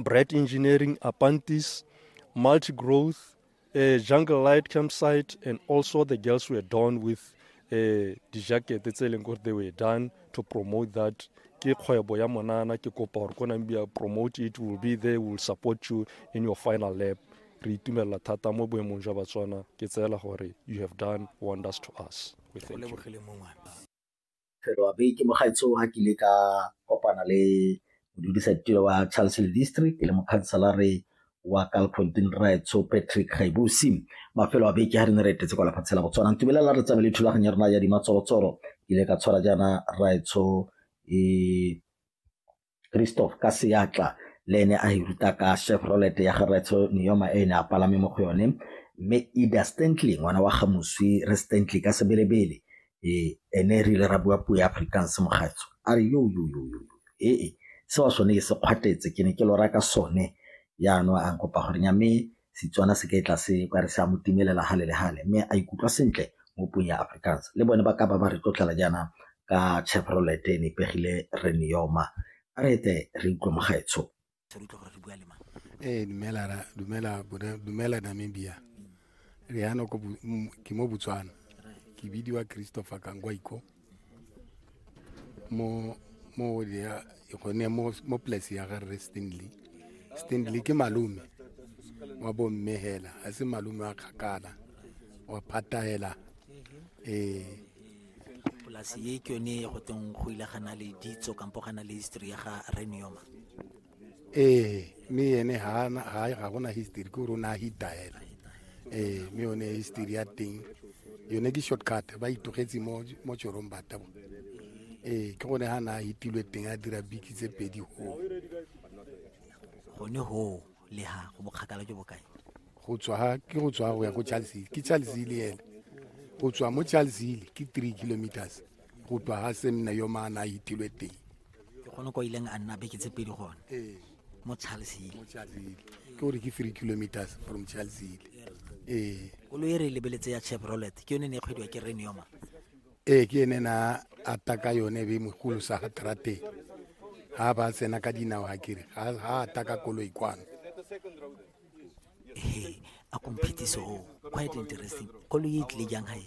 Bright Engineering, Apantis, Multi Growth, uh, Jungle Light Campsite, and also the girls were done with uh, eh, dijakete tse leng gore they were done to promote that ke kgwebo ya monana ke kopa gore ko nang bia promote it will be there will support you in your final lap re itumelela thata mo boemong jwa batswana ke tseela gore you have done wonders to us we thank you Feloabe ke mogaetsho ga ke ile ka kopana le modudisatiro wa Charleston District le mokhanselare wa Kalfontein Raetsho Patrick Gaibusi mafelo a beke ga re ne re etetse kwa lefatshe la Botswana ntumelela re tsamaye le thulaganyo ya rena ya dimatsorotsoro ke ile ka tshwara jaana Raetsho e Christoph ka seatla le ene a e ruta ka Chevrolet ya ga Retsho Neoma e ne a palame mo go yone mme Ida Stantley ngwana wa ga moswi re Stantley ka sebelebele e ene re ile ra bua puo ya Afrikaans mogatso a re yo yo yo yo ee se wa sone ke se kgwatetse ke ne ke lora ka sone ya no a nkopa gore nya mme Setswana se ka e tla se ka re se a mo timelela hale le hale, mme a ikutlwa sentle mo puong ya Afrikaans. Le bone ba ka ba ba re tlotlela jaana ka Chevrolet e nepegile re ne yoma. A re ete re utlwe mo gaetsho. Ee, dumela ra, dumela, dumela Namibia. Re yana ko, ke mo Botswana. Ke bidiwa Christopher Kangwaiko. mo mo ward ya gone mo mo place ya ga re Stanley Stanley ke malume wa bo mme hela a se malume wa kgakala wa phata hela eh polasi e ke yone go teng go ile gana le ditso kampo gana le history ya ga renioma ee mme ene ga gona history ke gore o ne a hitaela ee mme yone history ya teng yone ke shortcut ba itogetse mo tšorong batabo ee ke gone ga ne a hitilwe teng a dira biki tse pedi go gone go le ga go bokgakala jo bokae go tswa ke go tswa go ya ko charles hill ke charles hill ene go tswa mo charles hill ke three kilometers go tswa ga semna yo maana a hitilwe teng ke gone kwa ileng a nna beke tse pedi gone ee. mo charlesile ke gore ke three kilometers from charlesile ee koloi e re e lebeletse ya chevrolet ke yone ne e kgwediwa ke renioma ee ke ene na ata ka yone be mogolo sa ga trateng ga ba tsena ka dinao ga kere ga ata ka koloi kwano a komphetiso o quite interesting koloi e tlile jang gae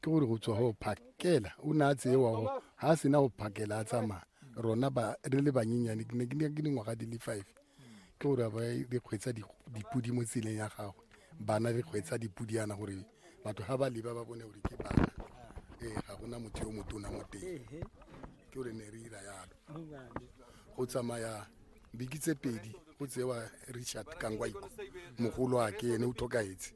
ke gore go tswa go phakela o ne a tseewa go ga a sena go phakela a tsamaya rona ba re le banyenyane ke ne ke ne ke dingwaga di le five ke gore ba re kgwetsa di- dipodi mo tseleng ya gagwe bana re kgwetsa dipodi yana gore batho ga ba leba ba bone gore ke bana ee ga gona motho yo motona mo teng ke gore ne re ira yalo go tsamaya biki tse pedi go tsewa richard kangwaiko mogolo a ke ene o tlhokaetse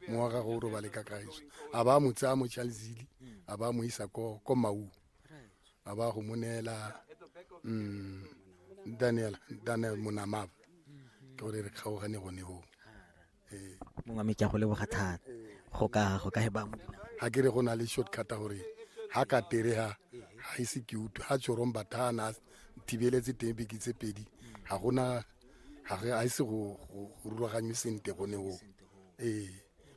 mo wa gagwe o robale ka kagiso a ba mo tsaya mo chalzili a ba mo isa ko ko mau a ba go mo neela mm, daniel daniel monamava ke gore re kgaogane gone goo mongwe me ke a go leboga thata go ka go ka he ba mo ga ke re go na le shortcut gore ha ka tere ha ha e se cute ha tshorong bathana thibeletse teng beke tse pedi ga gona ga re a se go rulaganywe sente gone go ee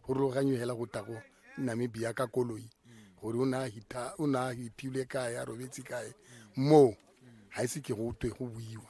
go rulaganywe hela go tago namibia ka koloi gore o ne a hita o ne a hitilwe kae a robetse kae moo ga e se ke go twe go buiwa